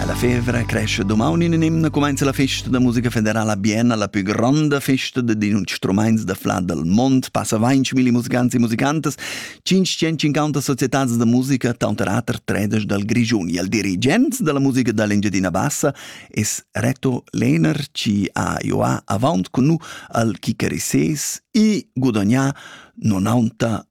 Alla fevra cresce domani in emna comenza la festa da musica federala a Bienna, la più grande festa di instruments da flà dal mondo. Passa 20.000 musicanti e musicantes, 550 società da musica, tanter ater tredes dal Grigiun. Il dirigent della musica dall'Engiadina Bassa es Reto Lehner, ci ha joa avant con nu al chicarises e gudagnà 90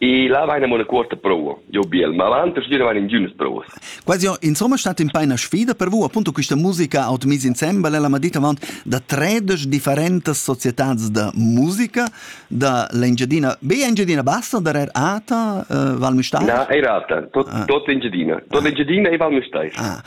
E là vaina mo la cuorta prova. Jau biel. Ma avant a stuer vain intgiünas provas. Quasi insomma stat in paina sfida per vous appunto questa musica out mise insembel. Ella m'ha dit avant da tredesch differentas societats da musica da l'Engiadina. Be Engiadina Bassa der er Ata, uh, Val Müstair? Na, er Ata. Tot, ah. tot Engiadina. Tot ah. Engiadina e Val Müstair. Ah.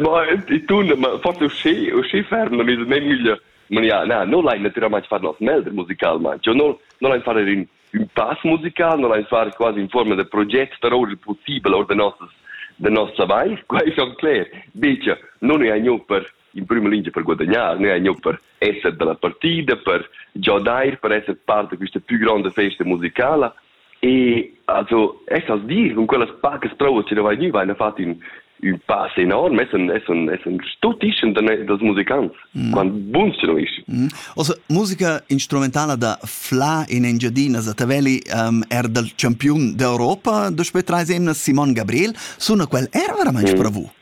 ma i tun forse uschi uschi ferm na mis meglio ma ja na no lai naturalmente far nos melder musical ma yo no no lai far in un pass musical no lai far quasi in forma de progetto però possibile or de nostas de nostra vai quai son cler dice non è agno per in prima lingia per guadagnar, ne gnanc per esser dalla partida, per giodair, per esser part de questa più grande festa musicala. E also, es als dir, con quellas pacas provas che vai gnü, vaina fat in un pass enorm, es un, es un, es un stuttischem dels musicants, mm. quant buns che no isch. Mm. Also, musica instrumentala da Fla in Engiadina, da Tavelli, um, er dal campiun d'Europa, dospö trais emnas, Simon Gabriel, suna quel era veramente mm. bravo?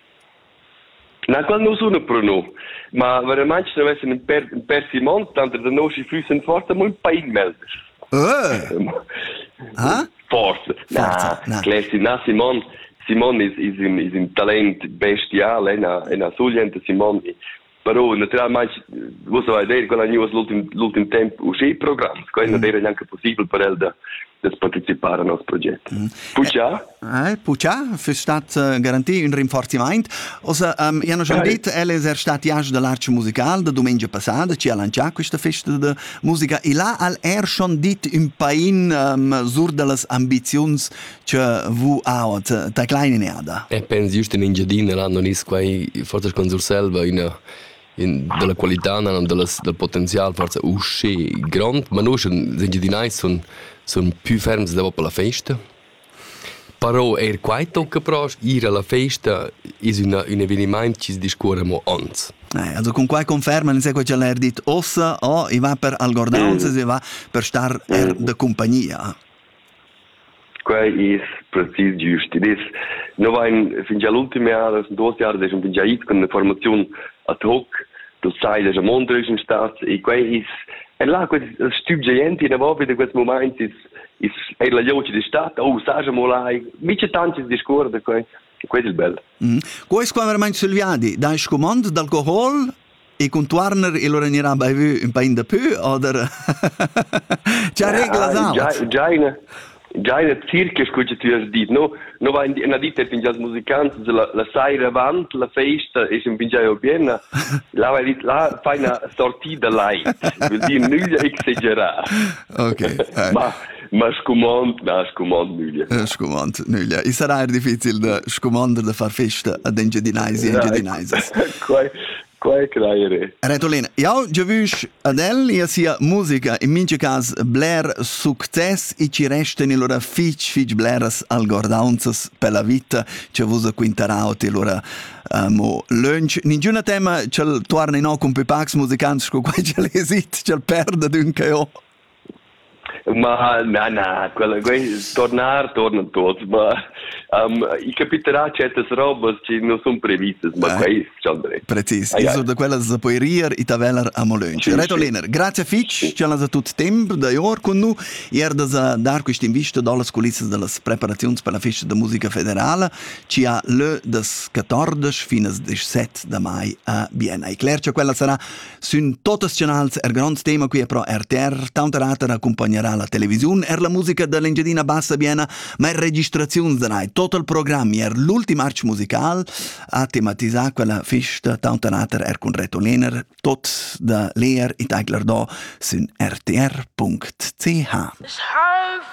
Naqual nus una pro nu, ma veramaing savessan in per in per Simon tanter da nos füssen forsa molt pain melder. Uh! Ah? Forsa. Na, na. Clesti, na Simon. Simon is is in is in talent bestial, ena ena sugliente Simon Però naturalmein vus savais dir quella gnivas l'ultim l'ultim temp usché programs, quai non era neanche possibel per el da da partecipar a nos proget. Mm. Puccia? Eh, Puccia, füss stat uh, garanti un rinforzimaint. Also, um, io non ho detto, el è stat iasch dell'arcio musical da domenica passata, ci ha lanciato questa festa de musica e là al er schon dit un pain um, sur dellas ambiziuns Cioè, vu out ta kleine Erde. E pensi just in Engiadina l'hanno nis quai forse con Surselva una in, della qualità, del potenzial forse uscì grond, ma noi sono engiadinai sono son più fermi dopo la festa. Però er quai tocca però ir alla festa è un, un avvenimento che si discorre mo ans. Eh, also con quai conferma, non sai quel l'ha dit ossa o i va per algordaunze, si va per star er de compagnia. quei is precis giust. Ed es, noi vain fingià l'ultim jahr, das sind duos Jahre, da schon fingià it con una formaziun ad hoc, du sai, da schon Mondrisch in stat, e quei is, e là, quest stüb giaient in avant da quest moment is, is eir la joci di stat, oh, saja mo là, mica tantis discuor da quei, quei è il bel. Mm. Quei es quando ormai sulviadi, dai scumond d'alcohol E contuorner il ora gnirà baivü ün pain da pü oder Già reglas ha? Già, già, già in circa scu che ti has dit, no? No va in ditta in jazz musicant, la, la saira avant la festa e si un pingiaio piena, là va dit là fai una sortida light, vuol dire nüglia exagerà. Ok. Ma Ma scumond, na, scumond nüglia. Eh, scumond nüglia. I sarà er difficil da scumander da far festa ad Engiadinaisi e Engiadinaisas. Quai, quai crajere. Retolina, jau giavüsch ad el e a sia musica in mincha cas bler success e ci restan lura fich fich bleras algordaunzas per la vita che vus quintaraut e lura uh, mo lunch. Ningiuna tema ch'el tuarna in ho cun pipacs musicants sco quai ch'el esit, ch'el perda d'ün che ho. Ma na, na, quella, quei tornar tornan tuots, ma um, i capiterà certas robas che non sun previstas, ma eh? quei schon dret. Precis, ah, io so da quella sa poi rir e taveller a molön. Sì, Reto sì. Lehner, grazie fitch, sì. che l'has tut tempo da ior con noi, ier da dar questa invista dallas culissas delle preparazioni per la festa de musica federale, ci ha lö das 14 fino 17 da mai a Vienna. E Claire, quella sarà Sün totas chanals er grand tema qui pro RTR, tanter ater accompagnerà la televisiun er la musica da l'Engiadina Bassa Biena, ma er registraziuns da nai. Tot il programm er l'ultim arch musical ha tematizà quella fista tanter ater er cun Reto Lehner, tot da leer it Eigler do sün rtr.ch. Es half